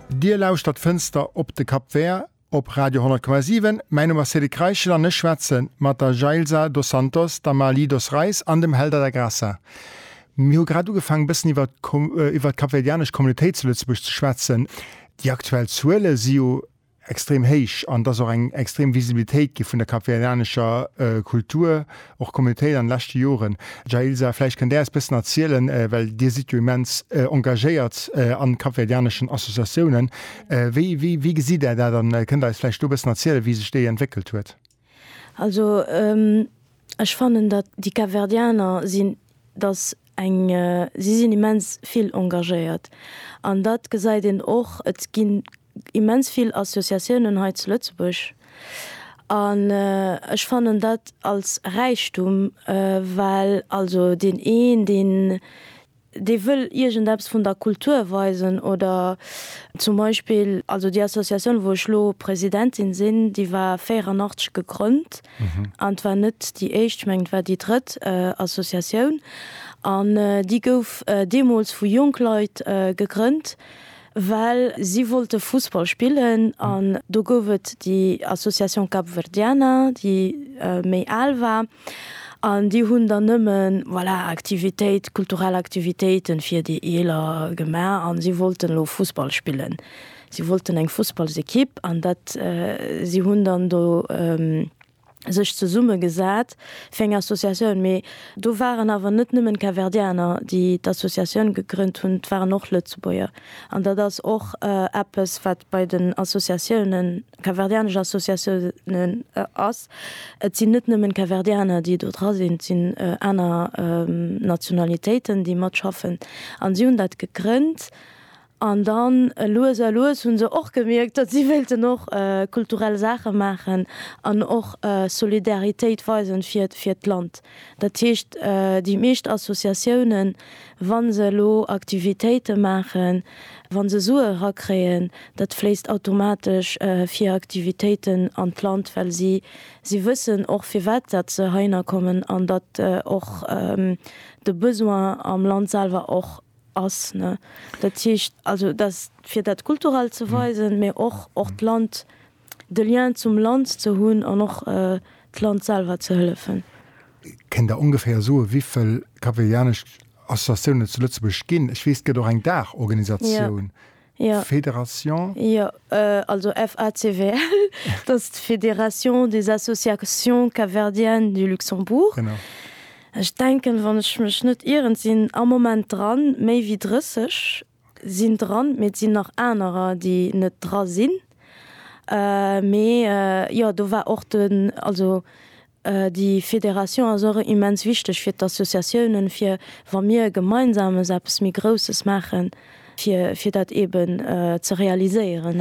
Dir lauschtert Fënster op de Cap Vert op Radio 10,7. Mäi Numm ass Cédric Reichel an ech schwätze mat der Jailsa dos Santos, der Marly dos Reis an dem Helder da Graça. Mir hu grad ugefaangen, e bëssen iwwer iwwer d'kapverdianesch Communautéit zu Lëtzebuerg ze schwätzen. Déi aktuell Zuele si jo extrem héich an et ass och eng extrem Visibilitéit gi vun der kapverdianescher Kultur, och Communautéit an de leschte Joren. Jailsa, vläicht kënnt Där eis e bëssen erzielen, well Dir sidd jo immens engagéiert an kapverdianeschen Associatiounen. Wéi, wéi, wéi gesitt Där dat an kënnt Där eis vläicht do e bëssen erzielen, wéi sech déi entwéckelt huet? Also ech fannen datt déi Kapverdianer sinn, datt eng, si sinn immens vill engagéiert an dat gesäit een och. Et ginn immens vill Associatiounen hei zu Lëtzebuerg an ech fannen dat als Räichtum, well also deen een deen, dee wëll iergendeppes vun der Kultur weisen oder zum Beispill, also déi Associatioun wou ech elo Presidentin sinn, déi war 84 gegrënnt an war net déi éischt, ech mengen et war déi drëtt Associatioun an déi gouf deemools vu jonk Leit gegrënnt, well si wollte Fussball spillen an do gouf et déi Association Capverdiana déi méi al war. An déi hunn dann nëmmen, voilà, Aktivitéit, kulturell Aktivitéiten fir déi Eeler gemaach an si wollten elo Fussball spillen. Si wollten eng Fussballsekipp an dat, si hunn dann do sech zesummegesat fir eng Associatioun. Mee do waren awer net nëmmen Capverdianer, déi d'Associatioun gegrënnt hunn, et waren och Lëtzebuerger. An dat ass och eppes, wat bei den Associatiounen Capverdianesch Associatiounen ass. Et sinn net nëmmen d'Capverdianer, déi do dra sinn, et sinn aner Nationalitéiten, déi matschaffen. An si hunn dat gegrënnt an dann lues a lues hu se och gemierkt, datt si wéilten och kulturell Saache maachen an och Solidaritéit weisen fir d'Land. Dat heescht, déi meescht Associatiounen, wa se elo Aktivitéite maachen, wa se Sue erakréien, dat fléisst automatesch fir Aktivitéiten an d'Land, well si si wëssen och, firwat dat se heiner kommen an datt och de Besoin am Land selwer och ass. Dat heescht also, datt fir dat Kulturellt ze weisen, mä och och d'Land de Lien zum Land ze hunn an och d'Land selwer ze hëllefen. Kéint Der ongeféier soe wivill kapverdianesch Associatiounen et zu Lëtzebuerg ginn? Ech weess et gëtt och eng Daachorganisatioun, Fédération? Jo, also FACVL, dat ass d'Fédération des Associations Capverdiennes du Luxembourg. Ech denken, wann ech mech net ieren, sinn am Moment dran méi wéi 30 Sinn dran, mee et sinn nach anerer déi net dra sinn. Mee jo do war och den, also déi Fédération ass och immens wichteg fir d'Associatiounen, fir wa mir gemeinsames eppes méi Grousses maachen, fir fir dat eeben ze realiséieren.